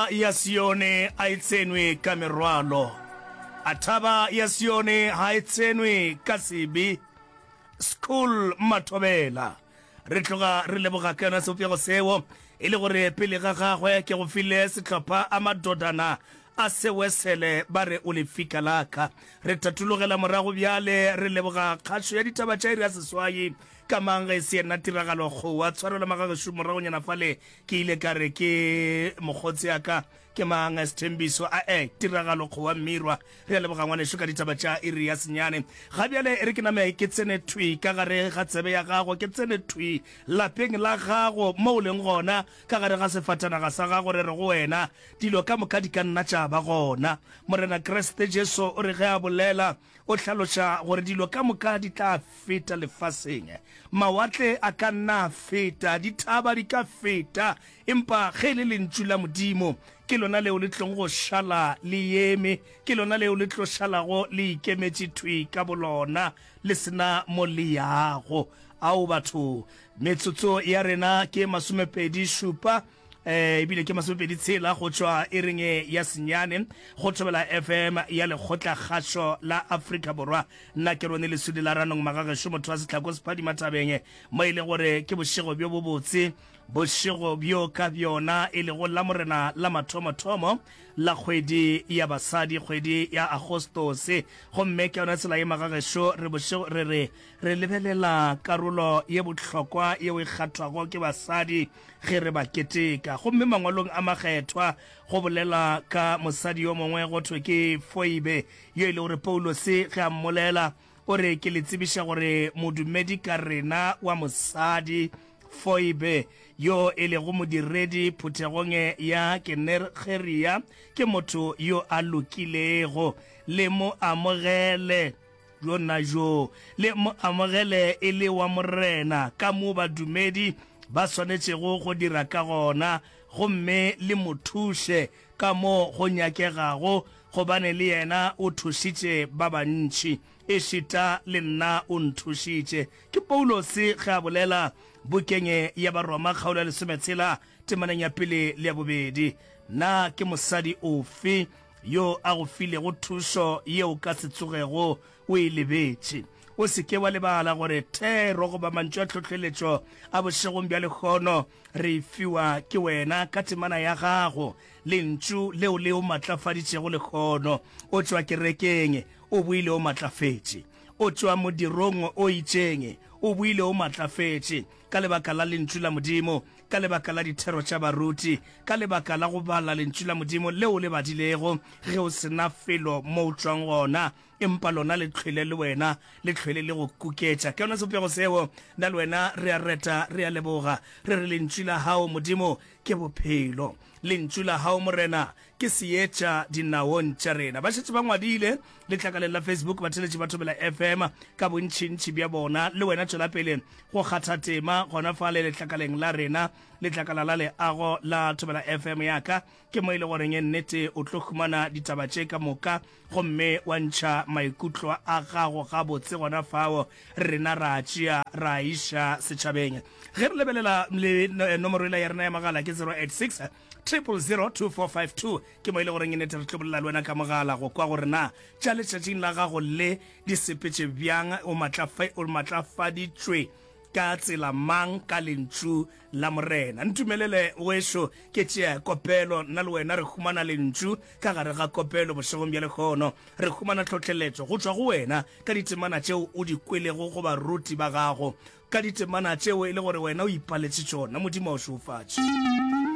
ya Sione a e tsenwe ka merwalo, a thaba ya Sione ha e tsenwe ka sebe. School Mathobela, re tloga re leboga ka yona sebopego seo e le gore pele ga gagwe ke go file sehlopha a madodana a sewesele ba re o lefika laka. Re thathologela morago bjale re leboga kgašo ya ditaba tša iri ya seswai ka mang ge e se yena tiragalo kgowa tshwarelo magagešo moragonyana fale Ke ile ka re, Ke mokgotse a ka? Ke mang? Sethembiso a e tiragalo kgowa Mmirwa. Re a leboga ngwanešu ka ditaba tša iri ya senyane. Ga bjale e re ke name ke tsene thwi ka gare ga tsebe ya gago, ke tsene thwi lapeng la gago mo o leng gona, ka gare ga sefatanaga sa gago. Re re go wena, Dilo ka moka di ka nna tša ba gona. Morena Kriste Jesu o re ge a bolela, O hlaloša gore dilo ka moka di tla feta lefaseng. Mawatle a ka nna a feta, dithaba di ka feta, empa ge e le Lentšu la Modimo, ke lona leo le tlogo go šala le yeme, ke lona leo le tlo šalago le ikemetše thwi ka bolona, le se na mo le yago. Ao, batho! Metsotso ya rena ke masomepedi-šupa. eh ebile ke masomepedi tshela go tšwa e reng e ya senyane go thobela fm ya lekgotla kgašo la afrika borwa nna ke rone lesudi la ranong magagešo motho wa setlhako sephadi matabeng mo e le gore ke bošego bjo bo botse bošego bjo ka bjona e lego la morena la mathomothomo la kgwedi ya basadi kgwedi ya agostose gomme ke yona tsela ye magagešo re bošego re re re lebelela karolo ye bohlokwa yeo e kgathwago ke basadi ge re ba keteka. Gomme Mangwalong a Makgethwa go bolela ka mosadi yo mongwe go thwe ke Foibe, yo e le gore Paulose ge a mmolela o re, Ke le tsebiša gore modumedi ka rena wa mosadi Foibe, yo e lego modiredi phuthegong e ya Kenergeria, ke motho yo a lokilego. Le mo amogele. Bjona bjo le mo amogele e le wa Morena, ka mo badumedi ba swanetšego go dira ka gona, gomme le mo thuše ka mo go nyakegago, gobane le yena o thušitše ba bantši, ešita le nna o nthušitše. Ke Paulose ge a bolela bukeng ya Baroma kgaolo ya lesometshela temaneng ya pele le ya bobedi. Na ke mosadi ofe Yo a go filego thušo yeo o ka se tsogego o e lebetše. O se ke wa lebala gore thero goba mantšu a tlhohleletšo a bošegong bja lehono re e fiwa ke wena ka temana ya gago, Lentšu leo le o matlafaditšego lehono. O tšwa kerekeng, o boile o matlafetše. O tšwa modirong o itšeng, o boile o matlafetše ka lebaka la Lentšu la Modimo. ka lebaka la dithero tša baruti, ka lebaka la go bala lentšu la Modimo le o le badilego ge o se na felo mo o tšwang gona, empa lona le hlwele le wena le hlwele le go kuketša ke yona sebopego seo. Nna le wena re a reta, re a leboga, re re, Lentšu la Gago, Modimo, ke bophelo. Lentšu la Gago, Morena, ke seetša dinaong tša rena ba šetse ba ngwadile letlakaleng la facebook batheletši ba thobela fm ka bontšhintšhi bja bona le wena tšwela pele go kgatha tema gona fa le letlakaleng la rena letlakala la leago la thobela fm yaka ke mo e le goreng e nnete o tlo humana ditaba tše ka moka gomme wa ntšha maikutlo a gago gabotse gona fao rena ra tšea ra iša setšhabeng ge re lebelela le nomoro ela ya rena ya magala ke 086 002452 ke mo e le goreng e nete re tlo bolela le wena ka mogala go kwa gore na tša letšatšing la gago le di sepetše bjang o matlafa o matlafaditšwe ka tsela mang ka lentšu la morena ntumelele wešo ke tšea kopelo nna le wena re humana lentšu ka gare ga kopelo bošegong bja lekgono re humana tlhohleletšo go tšwa go wena ka ditemana tšeo o di kwelego go baruti ba gago ka ditemana tšeo e le gore wena o ipaletše tšona modimo o šofatše